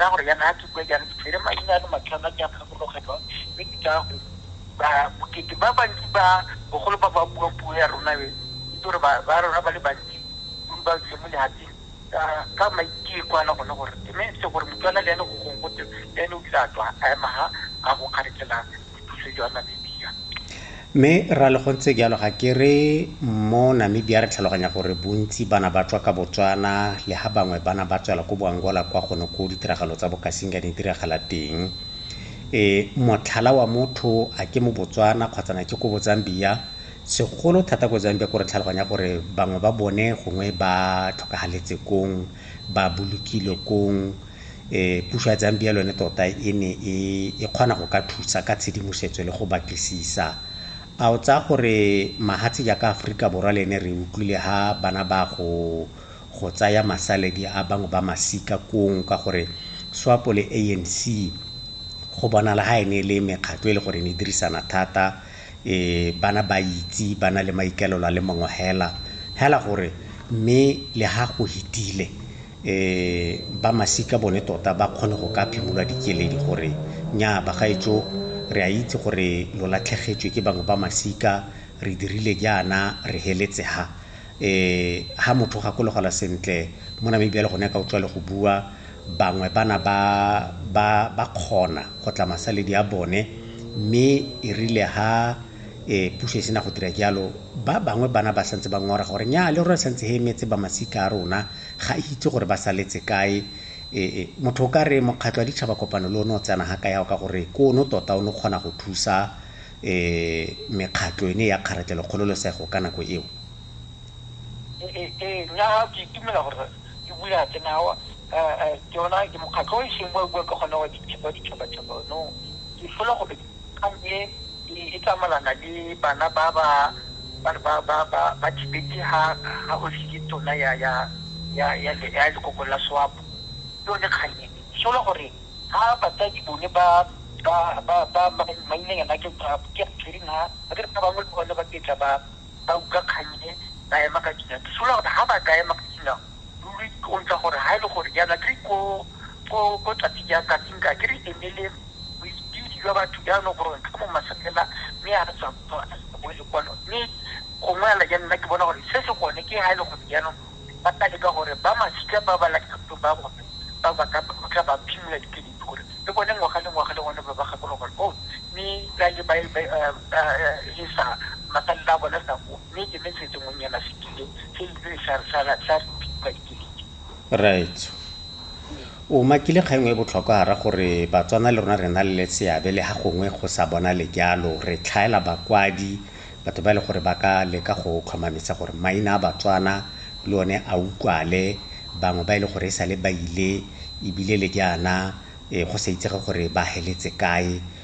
ka gore yana ha ke bue jang ke tshwere maina a le matlhano a ke a gakologelwa mme ke tsaya gore ba bokete ba bantsi ba bogolo ba ba buang puo ya rona e itse gore ba rona ba le bantsi dule ba tsile mo lehatseng ka maiteko a le gone gore mme se gore motswana le ene go gongwe gote le ene o tla tswa a ema ha a go kgaretselang bopuso jwa Namibia. Mme Rale go ntse jalo ga ke re mo Namibia re tlhaloganya gore bontsi bana ba tswa ka Botswana le ha bangwe bana ba tswela ko Boangola kwa gone ko ditiragalo tsa Bokasinga di diragala teng. E, motlhala wa motho a ke mo Botswana kgotsa na ke ko Bozambia, segolo thata ko Zambia ko re tlhaloganya gore bangwe ba bone gongwe ba tlhokagaletse kong, ba bolokilwe kong, um puso ya Zambia le yone tota e ne e e kgona go ka thusa ka tshedimosetso le go batlisisa. A o tsaya gore mahatshe jaaka Aforika Borwa le ene re utlwile ha bana ba go go tsaya masaledi a bangwe ba masika kong ka gore SWAPO le ANC go bonala ha e ne e le mekgatlo e le gore ne e dirisana thata um bana ba itse ba na le maikaelelo a le mangwe hela hela gore mme le ha go hitile um ba masika bone tota ba kgone go ka phimolwa dikeledi gore, Nnyaa bagaetsho, re a itse gore lo latlhegetswe ke bangwe ba masika, re dirile jaana, re heletse ha. Um ha motho o gakologelwa sentle, mo Namibia le gone ka o tswale go bua, bangwe ba na ba, ba, ba kgona go tla masaledi a bone, mme erile ha. Ee, puso e sena go dira jalo. Ba bangwe bana ba santse ba ngora gore, Nnyaa, le rona re santse re emetse ba masika a rona. Ga e itse gore ba saletse kae. Ee, motho o ka re Mokgatlho wa Ditšhaba Kopano le one o tsena ga kayao ka gore ke one tota o ne o kgona go thusa ee mekgatlho e ne ya kgaratlelokgololesego ka nako eo. Ee, ee, nna ke itumela gore e bule a tsena awa. Ee, ee, ke ona, ke mokgatlho o e seng wa bua ka gone wa ditšhabatšhaba ono. Ke fela gore Kgang e e tsamaelana le bana ba ba ba re ba ba ba ba thibetse ha ha Hosi ke tona ya ya ya ya le ya lekoko la Swapo. Ke yone kgang e e sola gore ha batsadi bone ba ba ba ba ba mainanyana ke ba ke Catherine ha ba ke ba bangwe le bone ba ke tla ba ba utlwa kgang e ba ema ka dinao. Ke sola gore ha ba ka ema ka dinao Ruri o ntsa gore ha e le gore jaana ke ko ko tlati ja kating ka ke re emele boipidi jwa batho jaanong gore ka mo maselela mme a re tswa bo le kwano mme gongwe ala ja nna ke bona gore se se gone ke ha e le gore jaanong ba tla leka gore ba masika ba ba lakatong ba bone ba ba ka tla ba phimola dikedi gore le bone ngwaga le ngwaga le gone ba ba gakologo o mme ka le ba e sa masalela a bone sa mme ke metsetse ngonnyana fetile se ile sa sala sa re mpitsa dikeledi raetso o makile kgang e botlhokwa ra gore batswana le rona re na le seabe le ha gongwe go sa bona le jalo re tlhaela bakwadi batho ba e le gore ba ka leka go tlhomamisa gore maina a batswana le one a utlwale bangwe ba e le gore e sale ba ile ebile le jaana e go sa itsege gore ba heletse kae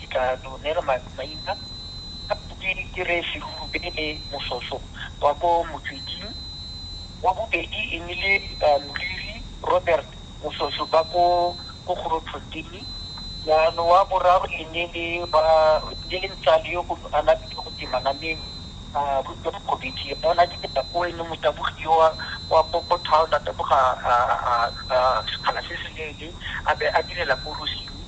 Dikano ne re maina a Bobedi ke Rre Segubele Moshoso wa ko Motsweding, wa bobedi e nnile Moriri Robert Moshoso ba ko Grootfontein, jaanong wa boraro e ne e le Ntsale yo a na bitsa go twe Manameng Mokgobedi ona ke tsela ko e ne motabogi yo wa ko town a taboga sekgala se se leele a be a direla ko Rosing.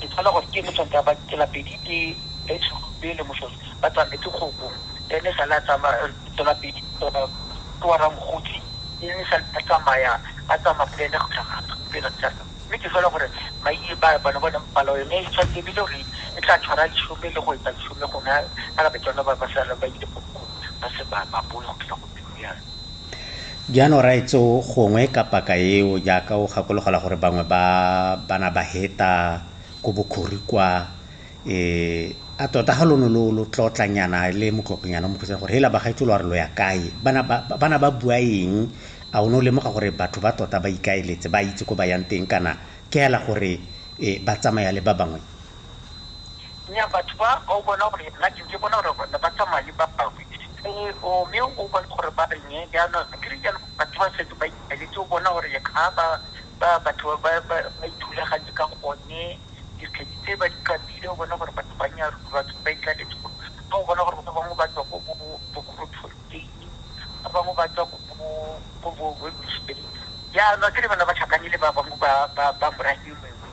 Ke tshola gore ke ene tshwanetse a ba tsela pedi tse e tshube le moshweshwe ba tsametse kgopo e ne sale a tsamaya tsela pedi ke wa ramokgotsi e ne sale a tsamaya a tsamaya le ene go tlhaga pele tsa mme ke tshola gore maiye ba bana bona palo yone e tshwanetse ebile gore e tla tshwara leshome le go etsa leshome gona ka ba tsone ba ba sala ba ile go ba se ba ba boe go tlhoka Jaana o raetse o gongwe ka paka eo jaaka o gakologelwa gore bangwe ba bana ba heta ko bokhori kwa, e, a tota ga lono lo lo tlotlanyana le motlotlonyana o mokhutsana gore hela bagaetsho lo a re lo ya kae? Bana ba, bana ba bua eng? A o ne o lemoga gore batho ba tota ba ikaeletse, ba itse ko ba yang teng kana ke hela gore, e, ba tsamaya le ba bangwe? Nna batho ba o bona gore nna ke ntse bona gore ne ba tsamaya le ba bangwe ee o mme o bone gore ba reng ee jaanong ke re jalo batho ba setse ba ipaletse o bona gore ga ba ba batho ba ba ba ithulaganye ka gone dikgedi tse ba di kapile o bona gore batho ba nya batho ba itlaletse gore ga o bona gore ba bangwe ba tswa ko bo bogolo tshwantseng ba bangwe ba tswa ko bo ko bo webusteng jaanong ke re bana ba tlhakane le ba bangwe ba ba ba morafeng mongwe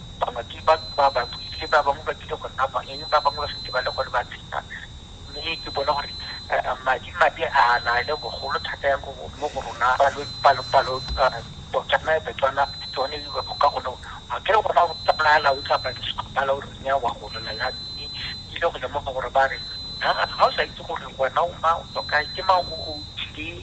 bangwe ke ba ba ba buile ba bangwe ba bile go nna kwa eng ba bangwe ba setse ba le gone ba tsena mme ke bona gore madi mabe a na le bogolo thata yang mo go rona palo botswana betswana tsone di ba ka gone a ke re gona go tsamaya la o tsamaya ke sekgopala o renya wa go lela ya mme ke ile go lemoga gore ba re ga o sa itse gore wena o mang o tswa kae ke mang o tlile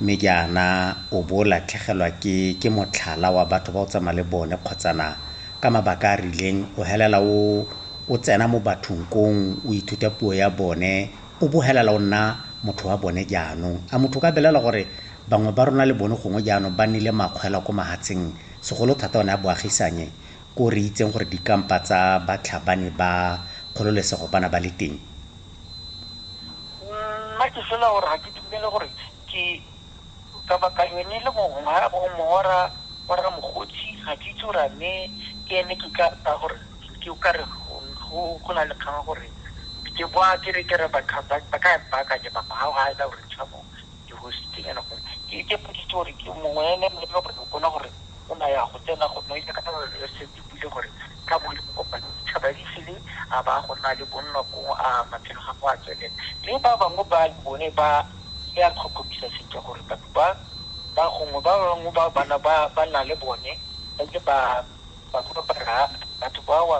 Mme jaana o bo o latlhegelwa ke ke motlhala wa batho ba o tsamaya le bone kgotsana ka mabaka a a rileng o helela o o tsena mo bathong kong o ithuta puo ya bone o bo helela o nna motho wa bone jaanong. A motho o ka belela gore bangwe ba rona le bone gongwe jaanong ba nnile makgwela ko mahatsheng segolo thata one a boagisanye ko re itseng gore dikampa tsa batlhabani ba kgololesego bana ba le teng? Nna ke fela gore ga ke dumele gore ke ka baka yone le mongwe ga go mora wa rra Mokgotsi ga ke itse gore a ne ke ene ke ka ka gore ke o kare go go na le kgang gore ke kwa ke re ke re ba ka ba ka ba ka ke ba ba ga ela gore tsha mo ke go se teng go ke ke putso gore ke mongwe ene mme ke go bona gore o na ya go tsena go no ile ka re se Ebile gore ka bo le mo kopane ditšhaba di file a ba go nna le bonno ko a matshelo ga go a tswelela. Mme ba bangwe ba le bone ba le a tlhokomisa sentle gore batho ba ba gongwe ba bangwe ba bana ba ba nna le bone ba ile ba ba go ba ra batho ba wa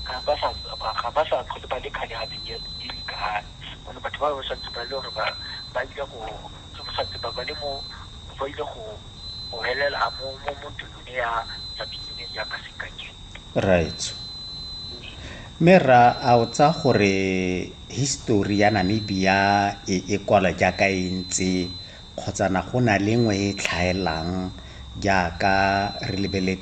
ga ba sa ga ba sa tlhole ba le kgale ga di le dikgang. Gone batho ba ba santse ba le gore ba ba ile go tsosa tseba ba le mo ba ile go go helela mo mo mo ntlong. ya subsidy jaaka sekai raitso mme ra a o tsa gore history ya namibia e e kwala jaaka e ntse kgotsana go na le ngwe e tlhaelang jaaka re lebeletse